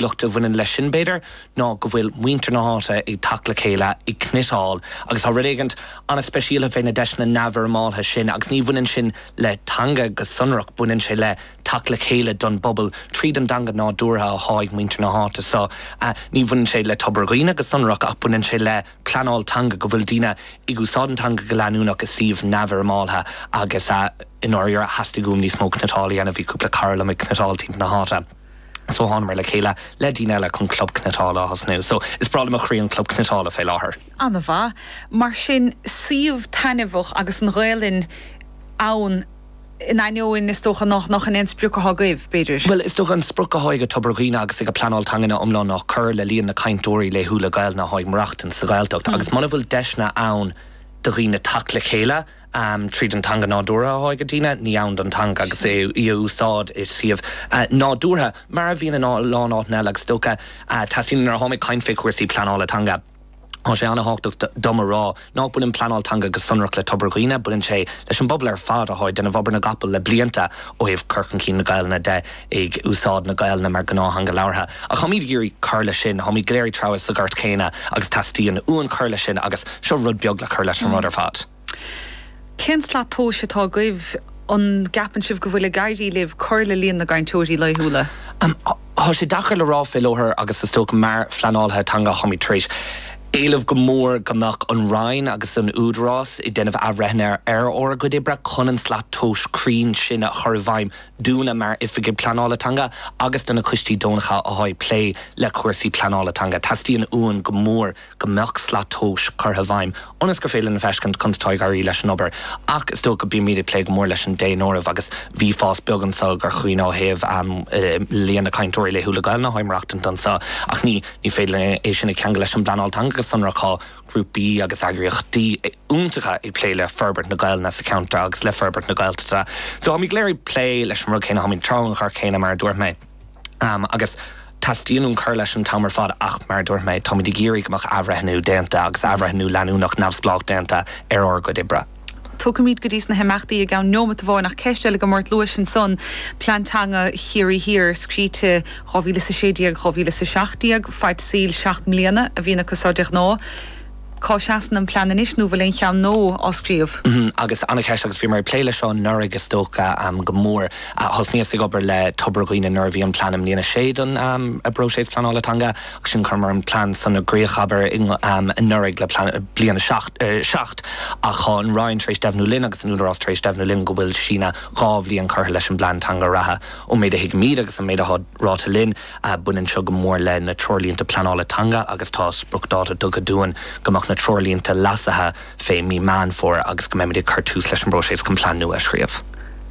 luach a bhaineann leis sin, b'fhéidir, ná go bhfuil muintir na háite ag teacht le chéile, ag cniotáil agus tá rud éigint ana-speisialta fé na deiseanna neamhfhoirmeáltha sin agus ní bhaineann sin le teanga go sonrach, baineann sé le teacht le chéile don bpobal tríd an dteanga nádúrtha athá ag muintir na háite so ní bhaineann sé le Tobar Dhuibhne go sonrach ach baineann sé le pleanáil teanga, go bhfuil daoine ag úsáid an teanga go leanúnach i suíomh neamhfhoirmeáltha agus i ndáiríre theastaigh uaim níos mó cniotáil a dhéanamh, bhí cúpla cara liom ag cniotáil timpeall na háite. So thánamar le chéile le daoine eile chun Club Cniotála a thosnú. So is breá le mo chroí an Club Cniotála fé láthair. Ana-mhaith. Mar sin, suíomh taitneamhach agus an Ghaelainn ann in ainneoin is dócha nach nach shin é an sprioc atá agaibh, b'fhéidir? Bhuel, is dócha an sprioc atá ag Tobar Dhuibhne agus ag an bpleanáil teanga ina iomlán ná cur le líon na cainteoirí laethúla Gaelainne atá ag maireachtaint sa Ghaeltacht. Agus muna bhfuil deiseanna ann do dhaoine teacht le chéile, tríd an teanga nádúrtha athá ag daoine ní ann don teanga agus í a úsáid i suíomh nádúrtha mar a bhíonn in a lán áiteanna eile agus is dócha teastaíonn nuair a táim ag caint fé chúrsaí pleanála teanga tá sé an-thábhachtach dom a rá ná baineann pleanáil teanga go sonrach le Tobar Dhuibhne baineann sé leis an bpobal ar fad athá ag déanamh obair na gcapall le blianta ó thaobh cur chun cinn na Gaelainne de. ag úsáid na Gaelainne mar gnáth-theanga labhartha. Ach táimid ag iarraidh cur leis sin. Táimid go léir ag treabhadh sa ghort chéanna agus teastaíonn uainn cur leis sin agus seo rud beag le cur leis an rud ar fad. Cén slat tomhais atá agaibh? An gceapann sibh go bhfuil ag éirí libh cur le líon na gcainteoirí laethúla? Tá sé deacair le rá fé láthair agus is dócha mar phleanálaithe teanga táimid tar éis éileamh go mór go mbeadh an Roinn agus an Údarás ag déanamh athbhreithnithe ar ár gcuid oibre chun an slat tomhais cruinn sin a chur i bhfeidhm. dúinne mar Oifigigh Pleanála Teanga agus do na coistí deonacha atá ag plé le cúrsaí pleanála teanga. Teastaíonn uainn go mór go mbeadh slat tomhais curtha i bhfeidhm ionas gur féidir linn a fheiscint conas atá ag éirí leis an obair ach is dócha go mbímid ag plé go mór leis an daonáireamh agus bhí fás beag anso i gCorca Dhuibhne ó thaobh líon na cainteoirí laethúla Gaelainne atá ag maireachtaint anso ach ní féidir linn é sin a cheangal leis an bpleanáil teanga go sonrach. grúpaí agus eagraíochtaí iontacha ag plé le forbairt na Gaelainne sa cheantar agus le forbairt na Gaeltachta. So táimid go léir ag plé leis an rud céanna, táimid ag treabhadh an ghoirt chéanna mar a dúirt mé agus teastaíonn uainn cur leis an t-am ar fad ach mar a dúirt mé, táimid ag iarraidh go mbeadh athbhreithniú déanta agus athbhreithniú leanúnach neamhspleách déanta ar ár gcuid oibre. Tiocfaimid go dtí sna himeachtaí i gceann neomat amháin ach ceist eile agam ort, luais ansan Plean Teanga Chiarraí Thiar scríte 2016, 2017 faid saoil seacht mbliana a bhíonn acu seo de ghnáth. Cá seasann an plean anois nó an bhfuil aon cheann nua á scríobh? Agus ana-cheist agus bhíomar ag plé leis seo anuraidh is dócha go mór. Thosnaíos ag obair le Tobar Dhuibhne nuair a bhí an plean i mbliain a sé don bpróiseas pleanála teanga. Sin chuireamair an plean san i gcríoch, abair, anuraidh le plean bliain a seacht ach tá an Roinn tar éis deimhniú linn agus an Údarás tar éis deimhniú linn go bhfuil síneadh dhá bhliain curtha leis an bplean teanga reatha. Ón méid a thuigimid agus an méid atá ráite linn, baineann seo go mór le na treoirlínte pleanála teanga agus tá spriocdháta tugtha dúinn go mbeadh na treoirlínte leasaithe fé mhí Meán Fómhair agus go mbeimid ag cur tús leis an bpróiseas chun plean nua a scríobh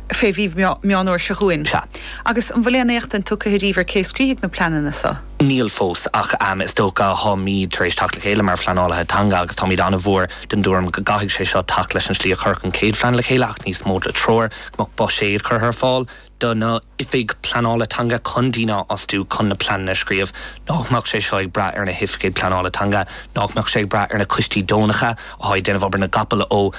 fé mhí Meán Fhómhair seo chugainn. Sea. Agus an bhfuil aon éachtaint tugtha ariamh ar cé a scríobhfaidh na pleananna so? Níl fós, ach is dócha táimid tar éis teacht le chéile mar phleanálaithe teanga agus táimid an-mhór den dtuairim go gcaithfidh sé seo teacht leis an slí a cuireadh an chéad phlean le chéile ach níos mó de threoir go mbeadh buiséad curtha ar fáil do na hoifigigh pleanála teanga chun daoine a fhostú chun na pleananna a scríobh. Nach mbeadh sé seo ag brath ar na hoifigigh pleanála teanga? Nach mbeadh sé ag brath ar na coistí deonacha atá ag déanamh obair na gcapall ó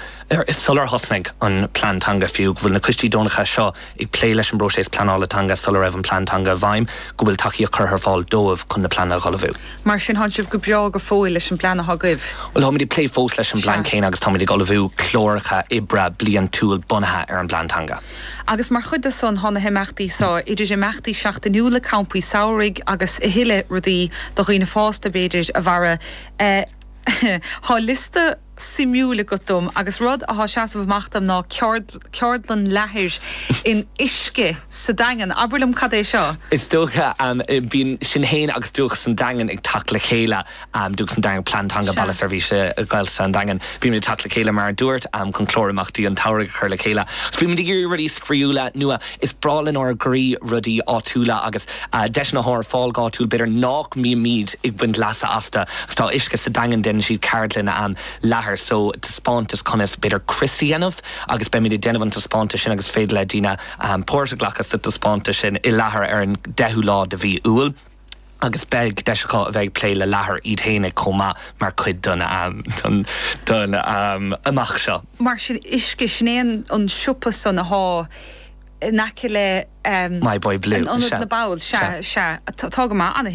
Sular thosnaigh an plean teanga fiú, go bhfuil na coistí deonacha seo ag plé leis an bpróiseas pleanála teanga sula raibh an plean teanga i bhfeidhm, go bhfuil tacaíocht curtha ar fáil dóibh chun na pleananna a ullmhú. Mar sin, thánn sibh go breá go fóill leis an bplean atá agaibh? Bhuel, táimid ag plé fós leis an bplean Sea. céanna agus táimid ag ullmhú cláracha oibre bliantúil bunaithe ar an bplean teanga. Agus mar chuid de san, thá na himeachtaí seo, idir imeachtaí seachtainiúla, campaí samhraidh agus a thuilleadh rudaí do dhaoine fásta, b'fhéidir, a mhaireadh, eh, thá liosta, suimiúil agat dom agus rud athá seasamh amach dom ná ceardlann leathair in Uisce sa Daingean. Abair liom cad é seo? Is dócha bíonn sinn féin agus Dúchas an Daingin ag teacht le chéile, Dúchas an Daingin, Plean Teanga Sea. Baile Seirbhíse Gaeltachta an Daingin. Bímid ag teacht le chéile mar a dúirt, chun clár imeachtaí an tsamhraidh a chur le chéile. Bímid ag iarraidh rudaí spraíúla, nua. Is breá lenár gcroí rudaí áitiúla agus. Deiseanna atá ar fáil go háitiúil B'fhéidir nách mbímíd ag baint leasa astu ach tá Uisce sa Daingean deineann siad ceardlann am leathair so taispeántas conas ab fhéidir crios a dhéanamh agus beimid ag déanamh an taispeántas sin agus is féidir le daoine páirt a ghlacadh sa taispeántas sin i leathair ar an 10ú lá de mhí Iúil agus beidh deis acu a bheith ag plé le leathair iad fhéinig chomh maith mar chuid don imeacht seo. Mar sin Uisce, sin é an siopa san athá. in aice le My Boy Blue an ionad, na baill. Sea, sea, tá go maith.